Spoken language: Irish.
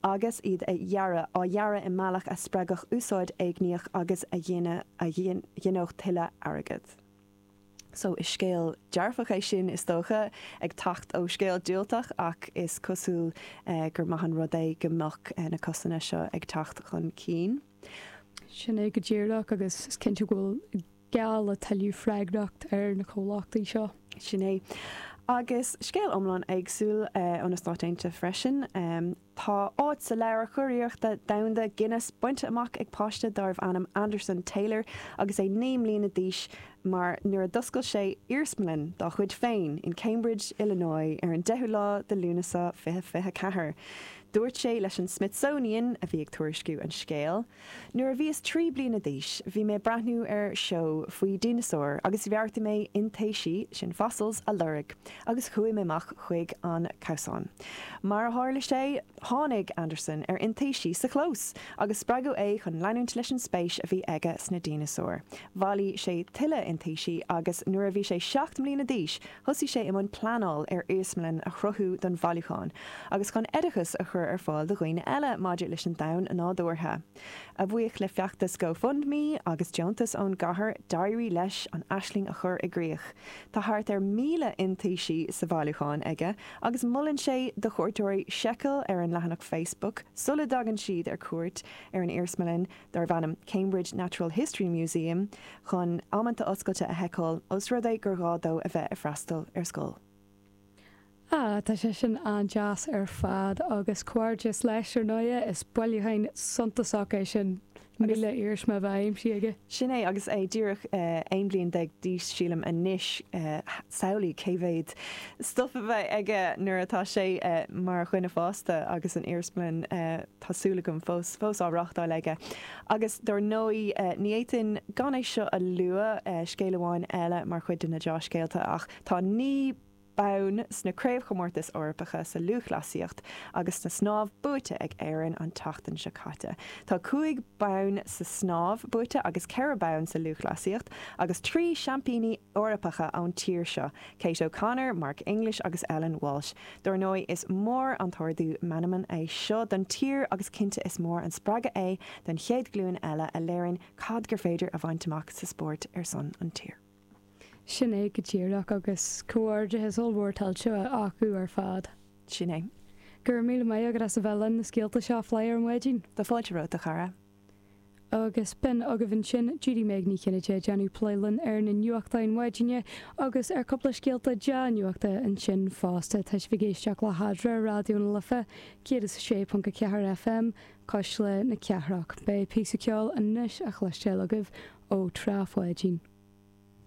agus iad a dhearadh, á dhearadh i mbealach a spreagfadh úsáid éigníoch agus a ghinfeadh tuilleadh airgid. So, is scéal dearfach é sin, is dócha, ag teacht ó scéal diúltach ach is cosúil gur maith an rud é go mbeadh na cásanna seo ag teacht chun cinn. Sin é go díreach agus is cinnte go bhfuil. geall le tuilleadh freagrachta ar na comhlachtaí seo. Sin é. Agus scéal iomlán éagsúil ó na Stáit Aontaithe freisin. Tá áit sa leabhar curiarrachtaí domhanda Guinness bainte amach ag páiste dárbh ainm Anderson Taylor agus é naoi mbliana d'aois mar nuair a d'oscail sé iarsmalann dá chuid féin in Cambridge, Illinois ar an 10ú lá de Lúnasa 2024, dúirt sé leis an Smithsonian, a bhí ag tuairisciú an scéil. Nuair a bhíos trí bliana d'aois, bhí mé ag breathnú ar seó faoi dhineasáir agus bheartaigh mé iontaisí, sin fossils, a lorg agus chuaigh mé amach chuig an gcabhsán. Mar a tharla sé, tháinig Anderson ar iontaisí sa chlós agus spreagadh é chun leanúint leis an spéis a bhí aige sna dineasáir. Bhailigh sé tuilleadh iontaisí agus nuair a bhí sé seacht mbliana d'aois, Thosaigh sé i mbun pleanáil ar iarsmalann a chruthú don bhailiúchán agus chun oideachas a chur ar fáil do dhaoine eile maidir leis an domhan nádúrtha. A bhuí le feachtas GoFundMe agus deontas ón gcathair, d'éirigh leis an aisling a chur i gcrích. Tá thart ar 1,000 iontaisí sa bhailiúchán aige agus molann sé do chuairteoirí seiceáil ar an leathanach Facebook sula dtagann siad ar cuairt ar an iarsmalann, darb ainm Cambridge Natural History Museum chun amanta oscailte a sheiceáil os rud é gur gá dó a bheith ag freastal ar scoil. Ah, tá sé sin an-deas ar fad, agus comhghairdeas leis, ar ndóigh, is bailiúchán suntasach é sin, 1,000 iarsma a bheith aimsithe aige. Sin é, agus é díreach 11 bliain d'aois, sílim, anois, samhlaigh cé mhéad stuif a bheidh aige nuair atá sé mar dhuine fásta agus an iarsmalann. tá súil agam, fós á reáchtáil aige. Agus dar ndóigh, ní fhéadfainn gan é seo a lua, scéal amháin eile mar chuid de na dea-scéalta, ach tá naoi mbonn sna Craobhchomórtais Eorpacha sa Lúthchleasaíocht agus sa Snámh buaite ag Éirinn an tseachtain seo caite. Tá cúig bonn sa snámh buaite agus ceithre bonn sa lúthchleasaíocht agus trí Sheaimpíní Eorpacha ón tír seo, Kate O'Connor, Mark English agus Ellen Walshe. Dar ndóigh, is mór an t-ardú meanman é seo don tír agus cinnte is mór an spreagadh é don chéad ghlúin eile a léiríonn cad gur féidir a bhaint amach sa spórt ar son an tír. Sin é go díreach agus comhghairdeachas ollmhór tuillte acu ar fad. Sin é. Go raibh míle maith agat as a bheith linn, na scéalta seo a phlé ar maidin. Tá fáilte romhat, a chara. Agus b'in agaibh ansin Judy Meg Ní Chinnéide ag déanamh plé linn ar na nuachtáin maidine agus ar chúpla scéalta dea-nuachta ansin fosta. Tá sibh ag éisteacht le hEadra, Raidió na Life 106.4 FM, cuisle na cathrach. Beidh píosa ceoil anois a chloisteáil agaibh ó Trá Pháidín.